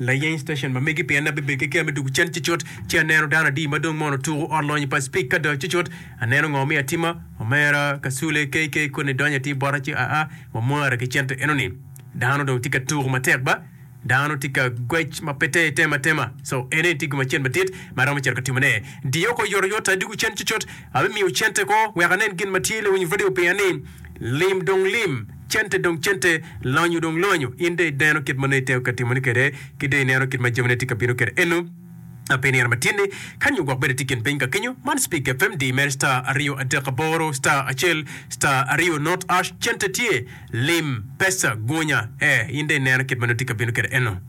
Layeny station ma megi pien abebedo ki kiya me dwogo cen ci cut ci aneno dano adi ma dong mono tuko ot lonyi pa Speke Kado ci cut aneno ngo mi atima omera Kasule KK koni donyo atir bota ci aa wamwara ki cente enoni dano dong tye ka tuko matek ba dano tye ka gwec ma pe ter tema tema so ene tye gum acel madit ma aromo cito ka timone diyo oko yot oyot adwogo cen ci cut abimiyo cente ko wek anen gin ma tye lawinyo radio piya ni lim dong lim. Cente dong cente, lonyo dong lonyo. In dong ineno kit ma nongo itego ka timone kwede, ki dong ineno kit ma jamine tye ka bino kwede eno. A Pi nino ma tyen-ni, ka nyo gwok bene itye i kin piny ka kenyo, man Speak FM, diyi mere star aryo adek aboro star acel star aryo not ash. Cente tye, lim, pesa, gunya, ee, in dong ineno kit ma nongo itye ka bino kwede eno.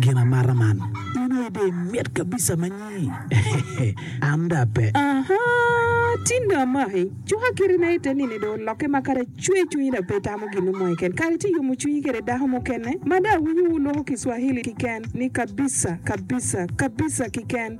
Gin amata man. In aye dong imit kabisa ma nyi. An dong ape. Aha! Tin dong amaki. Cuka kiti na ite nini dong olokke ma kadi acwe cwinyi dong pe itamo gin mo keken. Kadi ci iyomo cwinyi kede dako mukene ma dong awinyo wuloko Kiswahili kiken ni kabisa, kabisa, kabisa kiken.